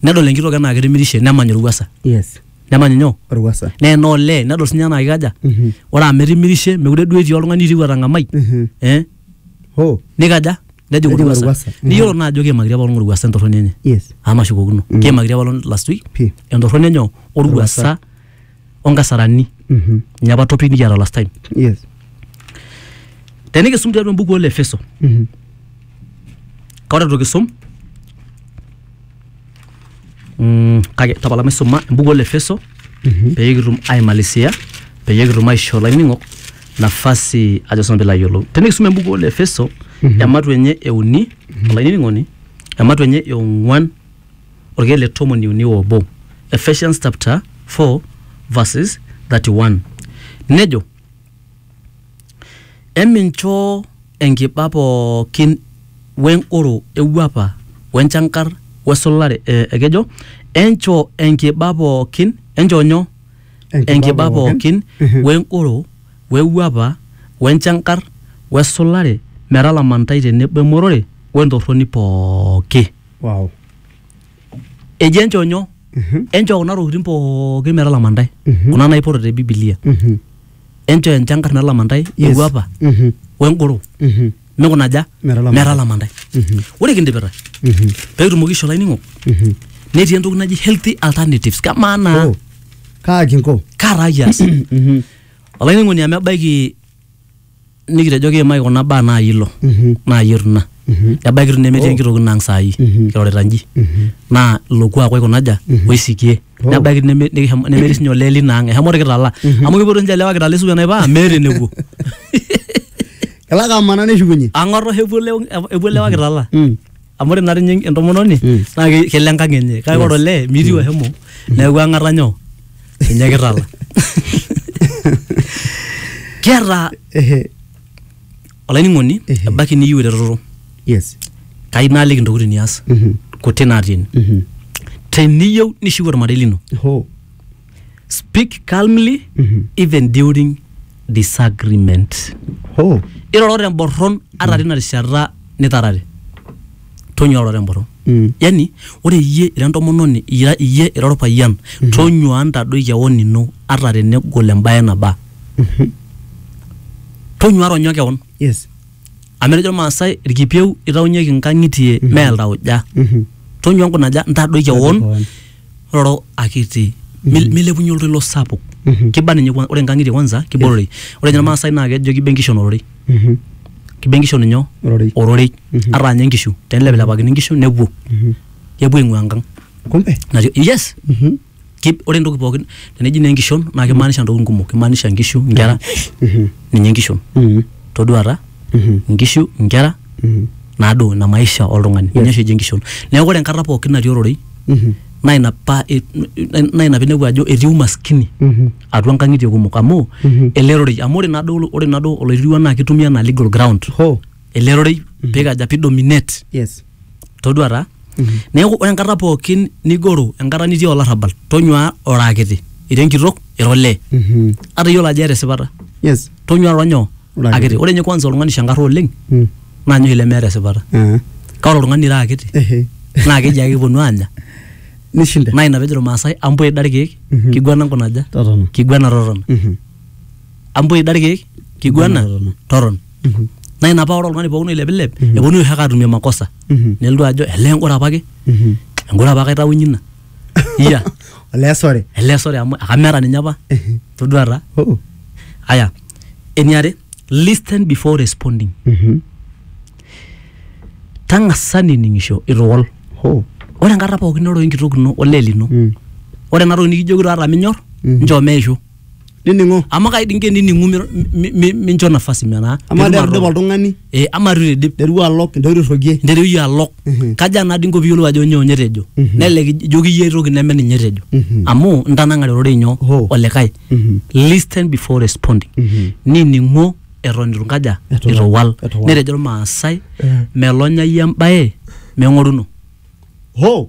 nedol enkitok enaa ketimirishe nemany orwuasa yes nemany nyoo orwasa naa enaa olee nedol sinye enaa kikaja Mhm. ore amu etimirishe mekure duo etii oltung'ani oitieu atang'amai Mhm. eh ho nikaja nejing Nejing orwuasa orwuasa. Mhm. niyiolo naa ajo keimakitia apaelong orwuasa entorroni enye yes amu mashukokino keimakitia apaelong last week Pii. entorroni enye orwuasa onkasarani Mhm. ninye apa topic nikiata last time Yes. tenikisum tiatua embuku ole efeso Mhm. kaore itu kisum mm, kake tapala maisuma embuku ole efeso Mhm. peyie kitum aimalisia peyie kitum aisho laining'ok nafasi ajo sinanu pilo ayiolou tenikisum embuku ole efeso Mhm. ematu enye euni olainining'oni ematu enye eong'uan Olkeek le tomoni uni o obo, Ephesians chapter 4 verses 31 nejo, Emincho enkiba pookin we ngoro e wuapa we nchankar we sulare eh, ekejo enchoo enkiba pookin enchoo nyoo Enkiba enkiba pookin. pookin we ngoro we wuapa we nchankar we sulare metalama ntae tenebo emorore we ntorroni pooki. wow. eji enchoo nyoo Mhm, enchoo kuna tokitin pookin metalama ntae Mhm. kuna naipoto te bibilia mhm, enchoo enchankarna elama ntae Yes. ewuapa mhm, wengoro mhm, mikunaja Metalama. metalama ntae mhm, ore kindipita mhm, peitumoki isho lainingo mhm. netii entoki naji healthy alternatives kamaa naa Oh, kaa kinko kaa taa kias Mhm, olainingoni amu ebaiki nikitejo kiimaki kuna baa naayie ilo naayie itu ina ebaiki itu nemetii enkitoki ino ang saai kirorita nji naa ilo kuak oikunaja oisikie nebaiki neme- nikishomo- nemetii sinye olee lina ang eshomo irkitala amu kipotu sinche ilewa kitala esuku enaipa meeta enepuo kelak amana neshukunye ang'or oshi epuo ilewa- epuo ilewa kitala Mm. amu ore naa tinye entomononi Mm. naa ke- kelo enkang enye kake ore olee mitiu ashomo neeku ang'ata nyoo ninye kitala kiata olainining'oni Ehe. ebaiki niyieu eretoto yes kai naaliki intokitin nias Mhm. kuti natii ene Mhm. teniyieu nishiu ormarei lino ho speak calmly Mhm. even during disagreement Oh. iroro temborron ata tina rishata nitarare tonyua iroro temborron Mm. yani ore iyie ira entomononi ira iyie ira orpayian tonyua ntadoi kewon ino ata tenegol embaye naba Mhm. tonyua ronyo kewon Yes. amu etejo irmaasai irkipieu itaunyeki nkang'itie mee iltauja Mhm. tonyua nkunaja ntadoi kewon kewon. roro akiti Mil- milepunye oltoilo sapuk Mhm. kiba ninye kwa- ore nkang'itie kwanza kiba ororei ore ninye irmaasai naa kejo kiba enkishon ororei Mhm. kiba enkishon inyo Ororei. ororei Mhm. ata ninye nkishu tenilepilepakini nkishu nepuo Mhm. kepuo aing'ua enkang Kumbe. Nati- yes Mhm. Ki- ore entoki pookin teneji naa enkishon naa kimaanisha ntokitin kumok kimaanisha nkishu nkera Mhm. ninye enkishon Mhm. toduata Mhm. nkishu nkera Mhm. naaduo ina maisha oltung'ani ninye oshi eji enkishon neeku ore enkata pookin natii ororei Mhm. naa ina pa e- naa ina pinepu ajo etii umaskini Mhm. atua nkang'itie kumok amu Mhm. ele rorei amu ore naaduo ore naaduo oloirirua naa kitumia anaa legal ground Hoo. ele rorei pikaja pidominate Yes. todua taa neeku ore enkata pookin nigoro enkata nitii olarrabal tonyua ora akiti ira enkitok ira olee Mhm. ata iyiolo ajo eeta esipata Yes. tonyua ira nyoo Ira akiti. akiti ore ninye kwanza oltung'ani shankarra oleng Mm. naa ninye oshi lemeeta esipata Ah. kake ore oltung'ani ira akiti Ehe. naa keji ake kiponu aanya Nishinda. naa ina pejo irmaasai ambua ida irkeek Mhm. kiguana nkunaja Totona. kiguana totona Mhm. ambua ida irkeek kiguana Totona. totona Mhm. naa ina paa ore oltung'ani pookin oilepilep Mhm. eponu oshi ake atumie makosa Mhm. nelotu ajo ele engoro apake Mhm. engoro apake aitawunyie ina iya Olee sore. ele sore amu akameeta ninye apa Mhm. todua taa Oh. aya eniare listen before responding Mhm. tang'asa nining'isho ituwol Oh. ore enkata pookin niroro enkitok ino olee lino Mm. ore ena toki nikijoki taata minyor Mhm. nchoo meishu nining'o amu kaidi inke nining'u mi- mi- mi- mincho nafasi metaa amaa pitum derdip ato- oltung'ani Eh, ama itu idip derua alok ntoiru irrogie nteru iyie alok Mhm. kaja naa dinko piyiolou ajo nyoo nye etejo Mhm. nelelek ijoki iyie aitoki neme ninye etejo Mhm. amu intanang'are ororei nyoo Hoo. olikae Mhm. listen before responding Mhm. nining'o eton itu nkaja Etu itu wal. wal Etu wal. netejo irmaasai Eh. melonyai embaye meng'oruno hoo